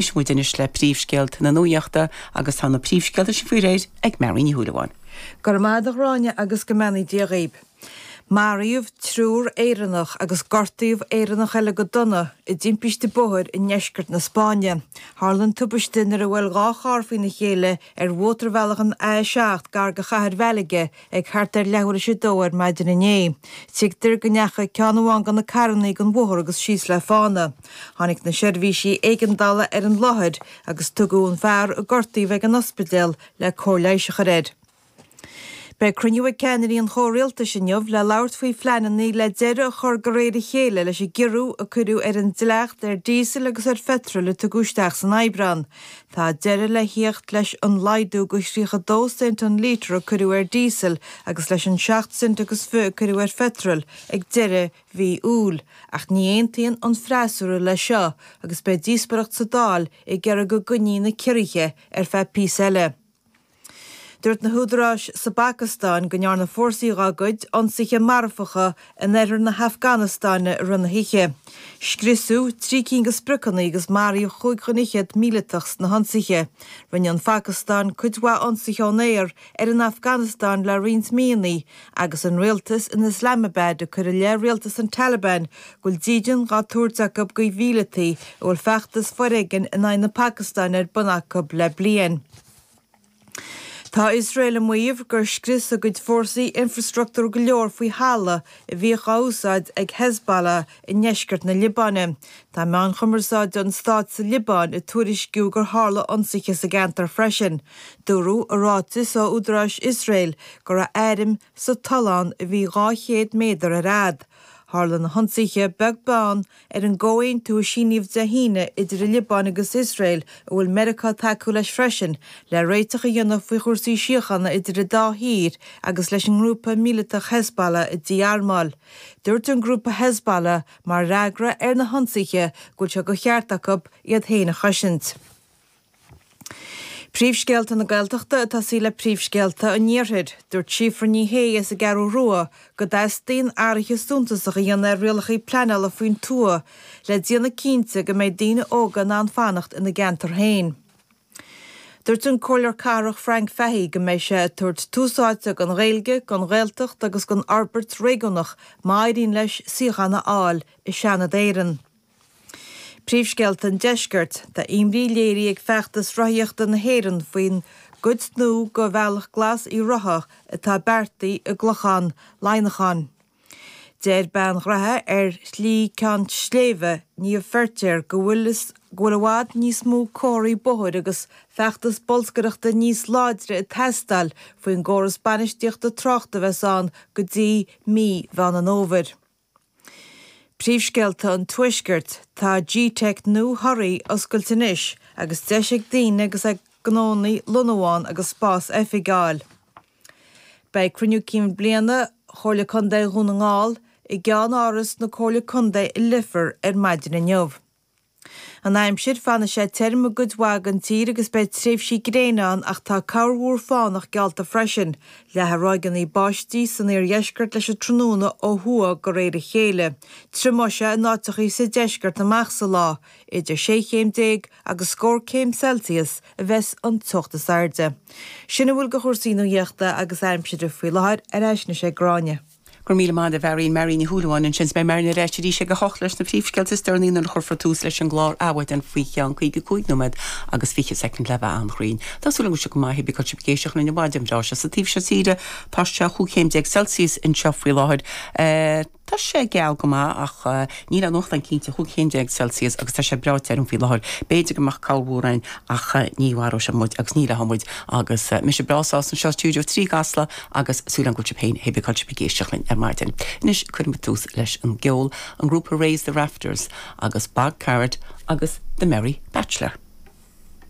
Éistfidh muid anois le príomhscéalta na nuaíochta agus tá na príomhscéalta sin faoi réir ag Marie Ní Shúilleabháin. Go raibh maith agat a Ghráinne agus go mbeannaí Dia dhaoib. Maraíodh triúr Éireannach agus gortaíodh Éireannach eile go dona i dtimpiste bóthair i ndeisceart na Spáinne. Tharla an tubaiste nuair a bhuail dhá charr faoina chéile ar mhótarbhealach an A7 gar do chathair Mhalaga ag thart ar leathuair tar éis a dó ar maidin inné. Tuigtear go ndeachaigh ceann amháin de na carrannaí den bhóthar agus síos le fána. Tháinig na seirbhísí éigeandála ar an láthair agus tugadh an fear a gortaíodh chuig an ospidéal le cóir leighis a chur air. Beidh cruinniú ag ceannairí an chomhrialtais inniu le labhairt faoi phleananna le deireadh a chur de réir a chéile leis an gciorrú a cuireadh ar an dleacht ar díosal agus ar pheitreal a tugadh isteach san Aibreán. Tá deireadh le theacht leis an laghdú de thríocha dó cent an lítear a cuireadh ar díosal agus leis an seacht cent agus fiche a cuireadh ar pheitreal ag deireadh mhí Iúil, ach ní aontaíonn an freasúra leis seo agus beidh díospoireacht sa Dáil ag iarraidh go gcoinní na ciorruithe ar feadh píosa eile. Dúirt na húdaráis sa bPacastáin go ndearna fórsaí dá gcuid ionsaithe marfacha in oirthear na hAfganastáine i rith na hoíche. Scriosadh trí cinn de spriocanna agus maraíodh chúig dhuine fhichead míleatach sna hionsaithe. Rinne an Phacastáin cuid mhaith ionsaithe ón aer ar an Afganastáin le roinnt míonna Agus an rialtas in Islamabad ag cur i leith rialtas an Taliban go bhfuil dídean dhá tabhairt acu do mhíleataigh a bhfuil feachtas foréigin in aghaidh na Pacastáine ar bun acu le bliain. Tá Iosrael ag maíomh gur scrios a gcuid fórsaí infreastruchtúr go leor faoi thalamh a bhíodh á úsáid ag Hezbollah i ndeisceart na Liobáine. Tá meáin chumarsáide an stáit sa Liobáin ag tuairisciú gur tharla ionsaithe sa gceantar freisin. Dúradh i ráiteas ó údaráis Iosrael go raibh airm sa tollán a bhí 200 méadar ar fhad. Tharla na hionsaithe beag beann ar an gcomhaontú a síníodh Dé hAoine idir an Liobáin agus Iosrael, a bhfuil Meiriceá ag tacú leis freisin, le réiteach a dhéanamh faoi chúrsaí síochána idir an dá thír agus leis an ngrúpa míleatach Hezbollah a dí-armáil. Dúirt an grúpa Hezbollah mar fhreagra ar na hionsaithe go bhfuil sé de cheart acu iad féin a chosaint. Príomhscéalta na Gaeltachta ag tosaí le príomhscéalta an Iarthair. Dúirt Síofra Ní Shé as an gCeathrú Rua go dteastaíonn athruithe suntasacha a dhéanamh ar rialacha pleanála faoin tuath le déanamh cinnte go mbeidh daoine óga in ann fanacht ina gceantar féin. Dúirt an Comhairleoir Cathrach Frank Fahy go mbeidh sé ag tabhairt tús áite don Ghaeilge, don Ghaeltacht agus don fhorbairt réigiúnach má éiríonn leis suíochán a fháil i Seanad Éireann. Príomhscéalta an Deiscirt, Tá imní léirithe ag Feachtas Rothaíochta na hÉireann faoin gcuid nua de Bhealach Glas Uíbh Ráthaigh atá beartaithe i gClochán Laighneacháin. Deir bean ghnaithe ar Shlí Ceann Sléibhe, Niamh Feirtéar, go bhfuil go bhfuil i bhfad níos mó comharthaí bóthair agus feachtas bolscaireachta níos láidre ag teastáil faoin gcóras bainistíochta tráchta a bheas ann go dtí mí Mheán an Fhómhair. Príomhscéalta an Tuaiscirt, Tá gteic nua Thoraí oscailte anois agus deis ag daoine agus ag gnónna lonnú ann agus spás oifige a fháil. Beidh Cruinniú Cinn Bliana Chomhairle Contae Dhún na nGall i gCeannáras na Comhairle Contae i Leifear ar maidin inniu. An Aimsir, Fanfaidh sé tirim i gcuid mhaith den tír agus beidh tréimhsí gréine ann ach tá corrmhúr fánach geallta freisin, leathfaidh ráigeanna báistí san iardheisceart leis an tráthnóna ó thuaidh de réir a chéile. Triomóidh sé in áiteachaí sa deisceart amach sa lá, idir sé chéim déag agus scór céim Celsius a bheas an teocht is airde. Sin a bhfuil de chúrsaí nuaíochta agus aimsire faoi láthair, ar ais anois ag Gráinne. Go raibh míle maith agat, a Mharian, Marian Ní Shúilleabháin ansin, 's beidh Marian ar ais arís ag a hocht leis na príomhscéalta is deireanaí nuair a chuirfear tús leis an gclár Adhmhaidin faoi cheann caoga cúig nóiméad agus fiche soicind le bheith an-chruinn. Tá súil agam go maith, cibé cén áit a bhfuil sibh ag éisteacht linn an mhaidin bhreá seo sa taobh seo tíre, tá sé chúig chéim déag Celsius anseo faoi láthair. Tá sé geal go maith ach níl aon ghrian ann cinnte chúig chéim déag Celsius agus tá sé breá tirim faoi láthair. B'fhéidir go mbeadh corrmhúr ann ach ní mharóidh sé muid agus ní leáfaidh muid agus mise breá sásta anseo i Stiúideo 3 i gCasla agus súil agam go bhfuil sibh féin cibé cén áit a bhfuil sibh ag éisteacht linn ar maidin. Anois cuirimid tús leis an gceol, an grúpa Raise the Rafters agus Bog Carrot agus The Merry Bachelor.